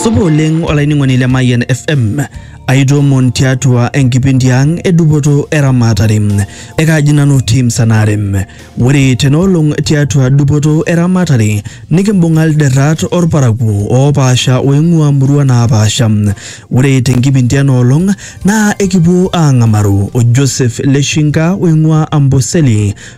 Supa oleng olainining'oni le Mayian FM. Aitoomon tiatua enkipindi ang e dupoto eramatare. Ekaaji nanu Tim Sanarem. Ore tenaolong tiatua dupoto eramatare nikimbung'a ilderrat orparakuo oopaasha oing'ua murua naapaasha. Ore tenkipindi enoolong naa ekipuo aang'amaru o Joseph Leshinka oing'ua Amboseli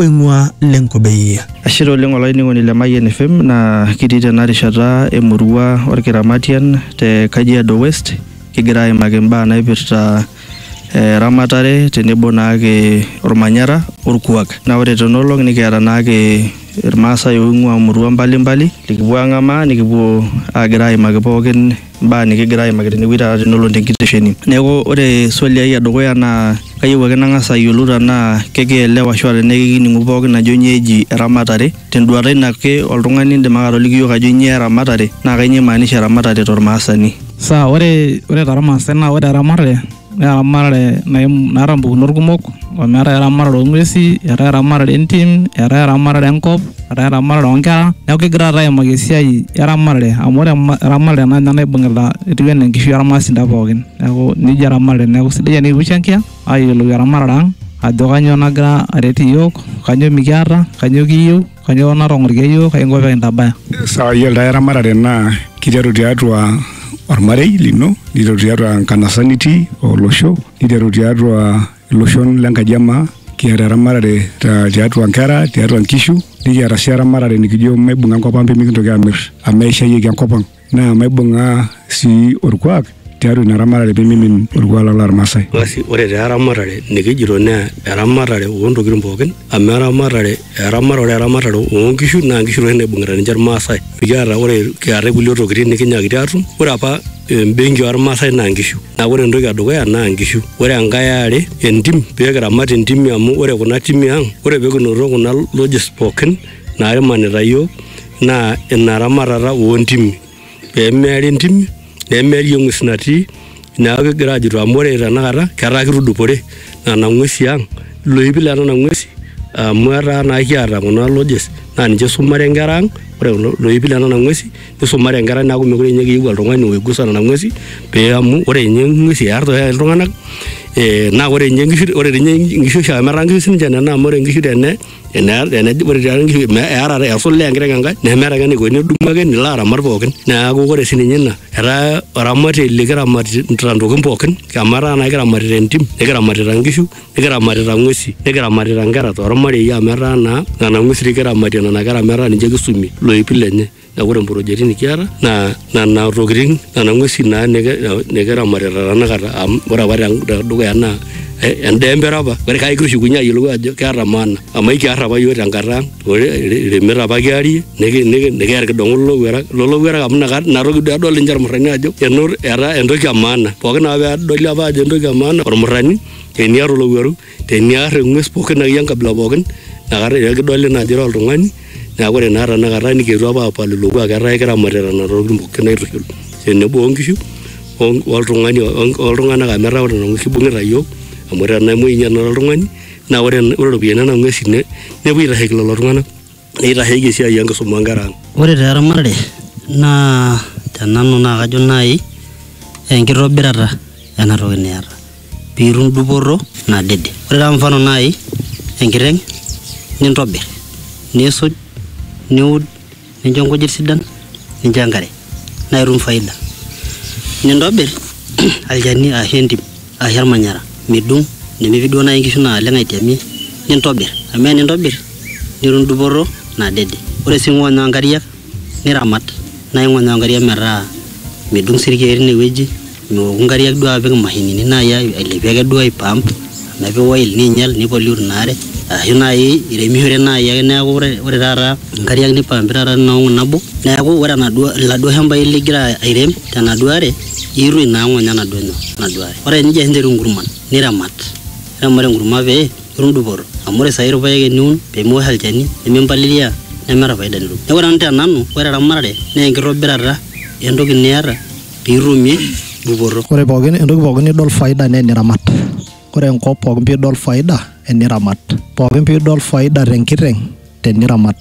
oing'ua Lenkobei. Ashe taa oleng olainining'oni le Mayian FM naa kitii tena rishata emurua Olkiramatian te Kajiado West kigira aimaki imbaa naipirta eramatare tenebo naake olmanyara olkuak. Naa ore tena olong nikiata naake ilmaasai oing'ua imurua mbalimbali likipuo ang'amaa nikipuo aagira aimaki pookin mbaa nikigira aimaki tenewueji taata tenelo tenkitesheni. Neeku ore swali ai edukuya naa kayieu ake nang'as ayiolou tenaa kekielewa ashu tenaa kekining'u pookin ajo nyoo eji eramatare. Tenduata ino ake oltung'ani indim ake atoliki iyiok ajo nyoo eramatare naa kanyoo imaanisha eramatare tormaasani. Sawa, ore tormaasai naa ore eramatare naa eramatare naata mpukunot kumok amu eetae eramatare oong'uesi eetae eramatare entim eetae eramatare enkop eetae eramatare oonkera neeku kigira taata aimaki esiai eramatare amu ore eramatare naa ninye naibung'ita etiu enaa enkishui ormaasinta pookin neeku nijia eramatare neeku sidai enikipushangia ayiolou eramatare ang ajo kanyioo nagira aret iyiook kanyioo mikiata kanyioo kiyieu. Kanyoo natong'orikia iyiook kaingo pee kintabaya? Sawa, iyiolo taa eramatare naa kiteru tiatua ormarei lino, niteru tiatua enkanasa nitii olosho, niteru tiatua iloshon le nkaji e maa. Kiata eramatare tiatua nkera, tiatua nkishu, nikiata sii eramatare nikijo maibung'a enkop ang' pee mikintoki aamir amu eishayieki enkop ang'. naa maibung'aa sii orkuak tiatua ina ramatare pee mimin orkuak lang lormaasai. Basi ore taa eramatare nikijito naa eramatare oontokitin pookin amu eramatare eramatare ore eramatare oonkishu naa nkishu toi naibung'ita ninche irmaasai. Mikiata ore eetae kulie tokitin nikinyaakiti aatum, ore apa embenki ormaasai naa nkishu. Neeku ore entoki e dukuya naa nkishu. Ore enkae e are entim pee kiramat intimi amu ore kuna timi ang, ore pee kinoto kuna lodges pookin naimanita iyiook naa ina ramatata oo ntimi pee meeri ntimi nemeeri eng'ues natii neeku kigira aajito amu ore tenakata ketaa kitudupore nena ng'uesi ang iloipi le nena ng'uesi amu etaa naa kiata kuna lodges naa ninche isumare inkera ang ore kulo loipi le nena ng'uesi nisumare inkera ang neeku mekure ninye kiyieu oltung'ani oigusa nena ng'uesi pee amu ore ninye ing'uesi earr toi ake iltung'anak eh naa ore inye inkishu ore dii inye inkishu oshi amu etaa inkishu sininche nena amu ore inkishu tene. eata esul enkiteng enkae nemeeta ake eneiko nidumu ake nilo aramat pookin neaku ore sii ninye ina etaa oramatiei likiramatita ntokitin pookin amu etaa naa ekiramatita entim nikiramatita nkishu nikiramatita ng'uesi nikiramatita nkera tormarei amu etaa naa nena ng'uesi dei kiramatie nena kera metaa ninche kisumie loipi lenye. Na ore mprojeti nikiata na nana tokitin nana ngwesi na nikiramatita tanakata amu ore apa tedukuya na endaa empira apa ore kake kishukunye ayiolou ajo keeta maana amu ekiar apa yiok tenkata aang iremet apa kiarie nikiya irkidongo lolowuarak amu inatoki duo edol ninche irmurani ajo etaa entoki emaana pookin ake pedoli ajo entoki emaana ormurani teniata olowuaru. Teniar eng'ues pookin akeyie enkabila pookin naa kata ira kidoli naa ajo ira oltung'ani neeku ore naa tanakata nikiyetuo apa apal ilo kuak etaa kiramatita nena tokitin pookin aitushul tenebo o nkishu o- oltung'ani oltung'anak amu etaa ore nena ng'uesi ibung'ita iyiok amu tenemuei ninye tenakata oltung'ani naa ore ore iropiani o nena ng'uesi ne nepuo aitasheki lelo tung'anak. neitasheki esiai enkisuma oonkera ang. Ore taa eramatare naa te nanu naa kajo naai enkitobirata ena toki niata pee itum dupoto nadede. Ore taa mfano naai enkiteng nintobir, niisuj, niud, nincho inkujit sidan, nincho enkare naa itum faida. Nintobir olchani ashu entim. Arashu olmanyara. Midung nemepi duo naaji inkishu naaleng aitiamie nintobir amu ore tenintobir nitum dupoto nadede. Ore sii ingonyaa inkariak niramat naa ingonyaa inkariak metaa midung sii ilkiek teine wueji miwoku inkariak duo apik imashinini naaji ailepie ake duo aipump amu epik oil neinyal nei pollute ina are. Arashu naaji iremishore naaji ake neaku ore taata inkariak neipaampi taata tina olong nabo neaku ore enaduo, iladuo shambai ligira airem tenaduo are Iirrui naa ng'onyo enaduo nyoo, enaduo are. Ore enijia ninteru inkurman niramat, niramat enkurma pee itum dupoto amu ore saai irpaek eniun pee miwosh olchani nemimpalilia nemeeta faida nitum. Neeku ore nanu te nanu ore eramatare naa enkitobirata entoki niata pee itumie dupoto. Ore pookin entoki pookin nidol faida naa eniramat. Ore enkop pookin piidol faida eniramat. Pookin piidol faida te nkiteng'. teniramat.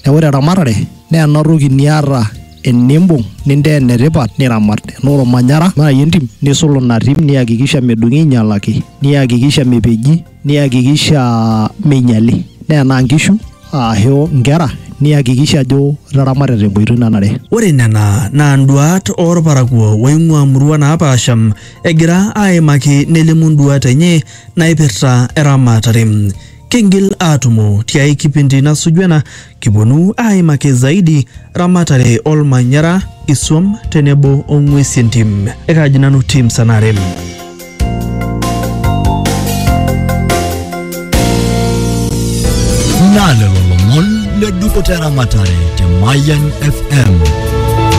Neeku ore eramatare naa ena toki niata enimbung nintaa enetipat niramat. Enaa ormanyara naai entim nisul ina tim niakikisha medung'i ainyialaki, niakikisha mepeji, niakikisha meinyiali. Naa enaa inkishu ashu inkera niakikisha ajo itaramata tenkoitoi nanare. Ore nena naa induaat oo lparakuo ooing'uaa imurua naapaasha egira aaimaki nelimu induaat enye naaipirta eramatare. Kingil aatumo tiai kipindi nasuju ena kiponu aaimaki zaidi ramatare olmanyara, isuam tenebo o ng'uesi entim. Ekaaji nanu Tim Sanarem. Naa lelo lomon le dupoto eramatare te Mayian FM.